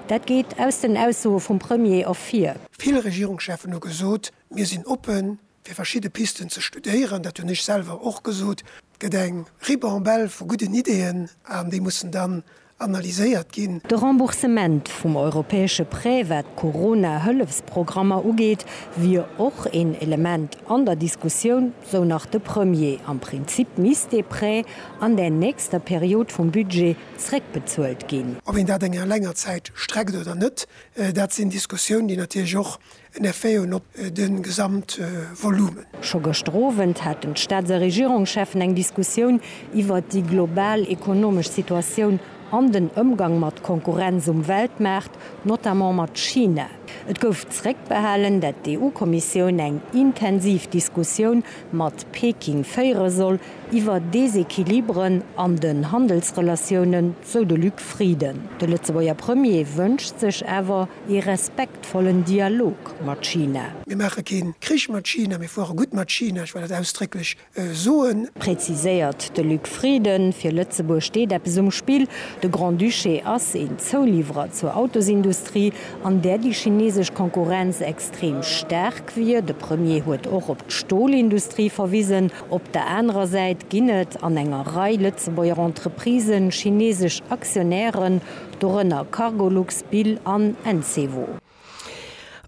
Dat geet aus den Aussoe vum Premier ervir. Vill Regierungscheffen hu gesot, mir sinn oppe fir verschidde Pisten ze studéieren. Dat hunn ech selwer och gesot. Et gëtt eng Ribambelle vu gudden Ideeën an déi mussen dann analyséiert ginn. De Remboursement vum europäesche Prêt wat d'Corona-Hëllefsprogrammer ugeet, wier och een Element an der Diskussioun, sou nach de Premier. Am Prinzip misst dee Prêt an där nächster Period vum Budget zréckbezuelt ginn. Ob een dat eng länger Zäit streckt oder net, dat sinn Diskussiounen, déi natierlech och en Effet hunn op de Gesamtvolumen. Scho gëschter Owend haten d'Staats a Regierungscheffen eng Diskussioun iwwert déi global ekonomesch Situatioun an den Ëmgang mat Konkurrenz um Weltmaart, notamment mat China. Et gouf zréckbehalen, dat d'EU-Kommissioun eng intensiv Diskussioun mat Peking féiere soll iwwer Desequilibren an den Handelsrelatiounen, sou de Luc Frieden. De Lëtzebuerger Premier wënscht sech awer ee respektvollen Dialog mat China. Mir maache kee Krich mat China, mir fuere gutt mat China, ech war dat ausdrécklech soen. Präziséiert de Luc Frieden. Fir Lëtzebuerg steet eppes um Spill. De Grand-Duché ass een Zouliwwerer zur Autosindustrie, an där déi chinesesch Konkurrenz extrem staark wier. De Premier huet och op d'Stolindustrie verwisen. Op der anerer Säit ginn et an enger Rei Lëtzebuerger Entreprisen chinesesch Aktionären, dorënner Cargolux, Bill an Encevo.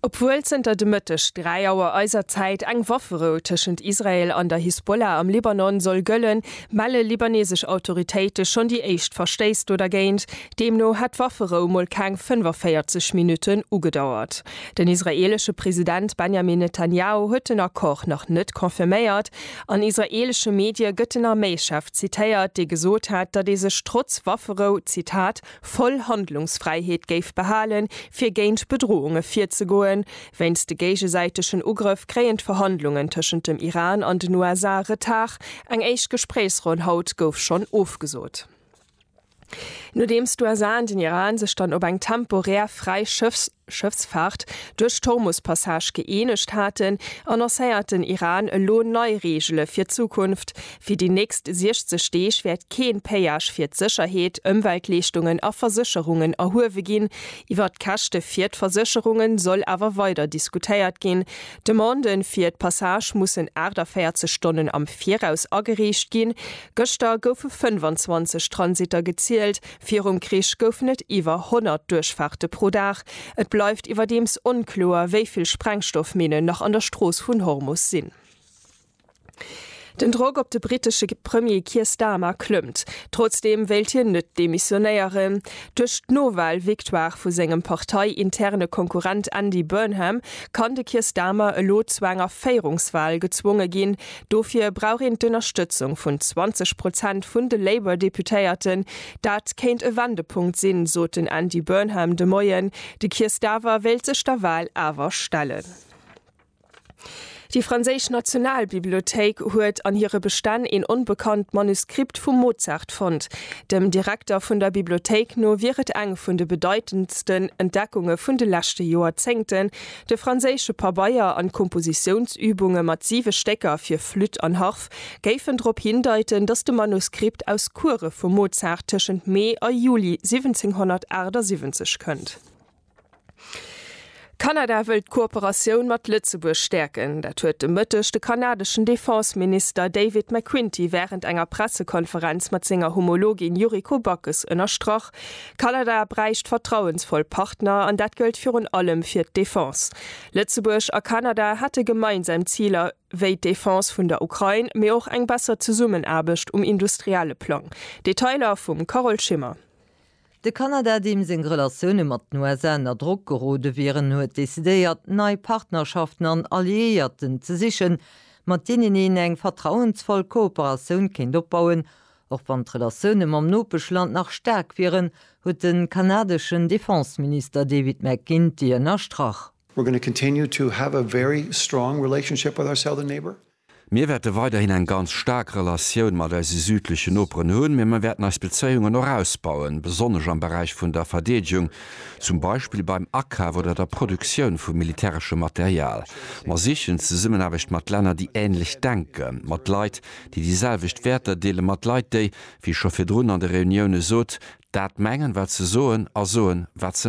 Obwuel zënter de Mëtteg 3 Auer eiser Zäit eng Wafferou tëschent Israel an der Hisbollah am Libanon soll gëllen, melle libanesesch Autoritéite schonn déi éischt Verstéiss do dergéint. Deemno hätt d'Wafferou mol keng 45 Minutten ugedauert. Den israeelesche President Benjamin Netanjahu huet den Accord nach net confirméiert. An israeelesche Medie gëtt den Arméischef zitéiert, dee gesot hätt, datt ee sech trotz Wafferou, Zitat, voll Handlungsfräiheet géif behalen, fir géint Bedrohunge virzegoen. Wéinst de géigesäitegen Ugrëff kréien d'Verhandlungen tëschent dem Iran an den USA Retard. Eng éischt Gespréichsronn haut gouf schonn ofgesot. Nodeems d'USA an den Iran sech dann op eng temporär fräi Schëffs. Schëffsfaart duerch d'Hormus-Passage gëeenegt haten, annoncéiert den Iran elo nei Reegele fir d'Zukunft, Fir déi nächst 60 Deeg wäert kee Péage fir d'Sécherheet, Ëmweltleeschtungen a Versécherungen erhuewe ginn. Iwwer d'Käschte fir d'Versécherunge soll awer weider diskutéiert ginn. D'Demande fir d'Passage mussen 48 Stonnen am Viraus agereecht ginn. Gëschter goufe 25 Transitter gezielt. Virum Krich goufen et iwwer 100 Duerchfaarte pro Dag. Et bleift iwwerdeems onkloer, wéi vill Sprengstoffminnen nach an der Strooss vun Hormus sinn. Den Drock op de brittesche Premier Keir Starmer klëmmt. Trotzdeem wéilt hien net demissionéieren. Duerch d'Nowal-Victoire vu sengem partei-interne Konkurrent Andy Burnham kann de Keir Starmer elo zu enger Féierungswal gezwonge ginn, Dofir brauch een d'Ënnerstëtzung vun 20 Prozent vun de Labour-Deputéierten. Dat kéint e Wendepunkt sinn, sot den Andy Burnham de Moien. De Keir Starver wéilt sech der Wahl awer stellen. Déi franséisch Nationalbibliothéik huet an hire Bestänn een onbekannt Manuskript vum Mozart fonnt. Dem Direkter vun der Bibliothéik no wier et eng vun de bedeitendsten Entdeckunge vun de leschte Joerzéngten, De franséische Pabeier an d'Kompositiounsübunge mat siwe Stécker fir Flütt an Harf géifen drop hindeiten, datt de Manuskript aus Kuere vum Mozart tëschent Mee a Juli 1778 kënnt. Kanada wëllt d'Kooperatioun mat Lëtzebuerg stäerken. Dat huet de Mëtteg de kanadeschen Defense-Minister David McQuinty wärend enger Pressekonferenz mat senger Homologin Yuriko Backes ënnerstrach. Kanada bräicht vertrauensvoll Partner an dat gëllt virun allem fir d'Defense. Lëtzebuerg a Kanada hätte gemeinsam Ziler wéi d'Defense vun der Ukrain, mee och eng besser Zesummenaarbecht um industrielle Plang. Detailer vum Carole Schimmer. De Kanada, deem seng Relatioune mat den USA ënner Drock gerode wieren, huet decidéiert, nei Partnerschaften an Alliéierten ze sichen, mat deenen een eng vertrauensvoll Kooperatioun kéint opbauen, Och wann d'Relatioune mam Nopeschland nach staark wieren, huet de kanadeschen Defenseminister David McGuinty ënnerstrach. Mir wäerte weiderhin eng ganz staark Relatioun mat eise südlechen Noperen hunn, mee mir wäerten eis Bezéiungen och ausbauen, besonnesch am Beräich vun der Verdeedegung, zum Beispill beim Akaf oder der Produktioun vu militäreschem Material. Mer sichen d'Zesummenaarbecht mat Länner, déi änlech denken, mat Leit, déi déi selwecht Wäerter deele mat Leit, déi, wéi scho virdrun an de Reunioune sot, dat mengen, wat se soen a soen, wat se.